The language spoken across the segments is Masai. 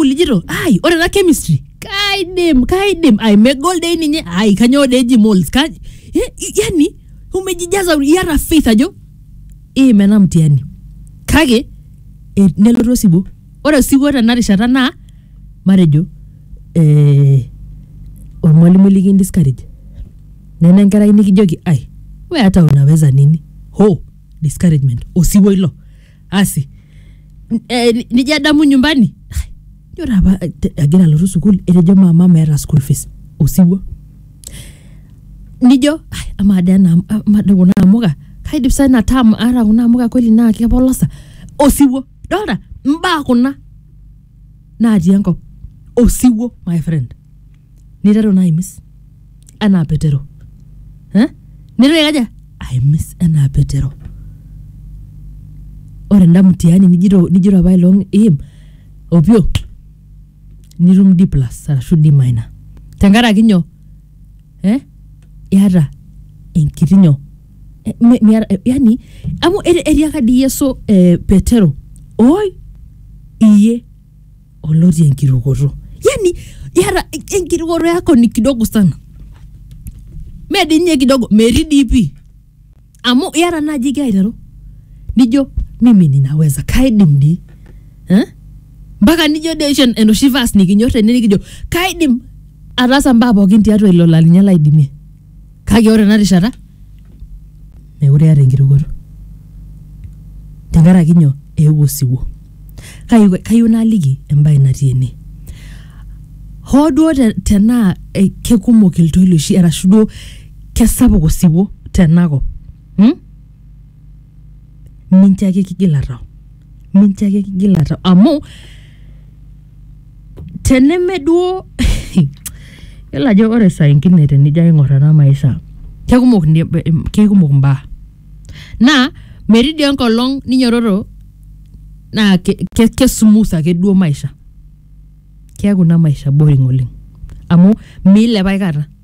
sukuul ijito ai ore ena chemistry kaidim kaidim ai megol dei ninye ai kanyoo dei eji moles ka eh, yani umejijaza iyata faith ajo iim ena mtihani kake eh, nelotu osiwuo ore osiwuo tena rishata naa matejo eh, ormwalimui likin discourage nena enkerai nikijoki ai we hata unaweza nini ho discouragement osiwuo ilo asi N- eh, ni- nijo adamu nyumbani Ai, ijo taa apa eh, te- agira alotu sukuul etejo mama meeta school fees osiwuo nijo "Ai, amaa dee ena- amaa dee kuna amuka kaidip sai ina tam aata kuna amuka kweli naa kepolosa osiwuo dolta mbaa kuna natii enkop osiwuo my friend niteru naa aimis enaa petero eh? niteru aikaja aimis enaa petero ore enda mtihani nijito nijito apa ilong im opio nitum d plus arashu d minor tenkaraki nyoo eh? iata enkiti nyoo Eh, mi- miata- eh, yani amu eti- etiaka dii yesu eh, petero oi iye oloti enkirukoto yani yara enkirukoto yako ni kidogo sana medi nye kidogo metii dii pii amu yara naaji igira aiteru nijo mimi ninaweza kaidim dii eh? mpaka nijo dii oshi enoshi vas nikinyor tene nikijo kaidim ataasa mbaa pookin tiatua ilo lalinye laidimie Kake ore ena rishata meekure eeta enkirukoto tenkaraki nyoo eewuo osiwuo. Kake kayieu naaliki embae natii ene, hoo duo te tenaa kekumok iltoiloshi arashu duo kesapuk osiwuo tenakop mmh, mincho ake kigila tau, mincho ake kigila tau amu, teneme duo yiolo ajo ore saa ingine tenijo aing'or ena maisha kekumok ni- em, kekumok imbaa naa metii dii enkolong ninyototo naa ke- ke- kesumuth ake duo maisha keeku ina maisha boring oleng amu miilep aikata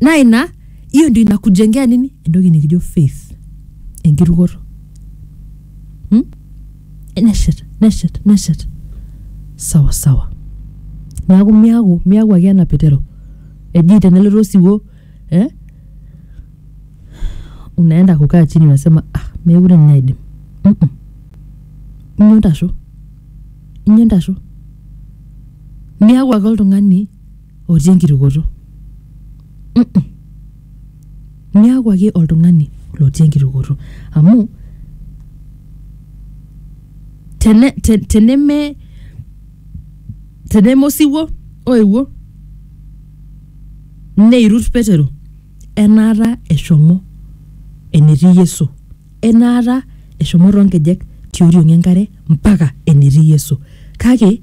naa ina hiyo ndio inakujengea nini entoki nikijo faith enkirukoto hmm? neshet neshet neshet sawa sawa neaku miaku miaku ake ena petero eji tenelotu osiwuo eh? unaenda kukaa chini unasema ah, mekure ninye aidim Mm-mm. inyo ntasho inyo ntasho miaku ake oltung'ani otii enkitukoto Mm-mm. niaku ake oltung'ani lotii enkitukoto amu tene, te, teneme teneme osiwuo oewuo neirut petero enaata eshomo enetii yesu enaata eshomo toonkejek tioriong enkare mpaka enetii yesu kake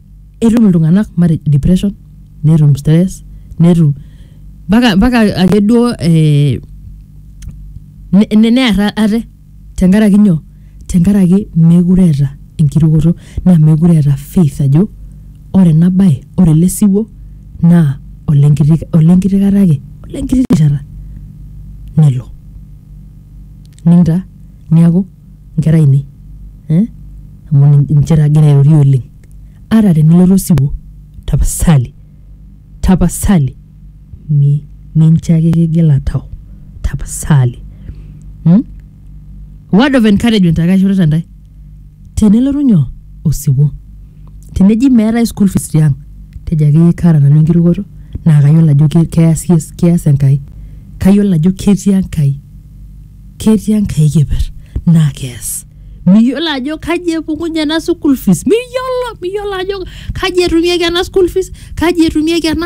etum iltung'anak matejo depression netum stress netum mpaka mpaka ake duo eh, ne- ne- near ate tenkaraki nyoo tenkaraki meekure eeta enkirukoto naa meekure eeta faith ajo ore ena baye ore ele siwuo naa olenkiti olenkiti kata ake olenkiti rishata nelo ninta niaku nkera ainei eh? amu nin- ninche taa agira airorie oleng ata tenelotu osiwuo tapasali tapasali mi- mincho ake kigila tau tapasali hmm? word of encouragement ake aishorita ntae tenelotu nyoo osiwuo teneji meetae school fees tiang tejo akeyie kaata nanu enkirukoto naa kayiolo ajo ke- keas yes- keas enkai kayiolo ajo ketii enkai ketii enkae keper naa kees miyiolo ajo kaji epukunye ena school fees miyiolo miyiolo ajo kaji etumieki ena school fees kaji etumieki ena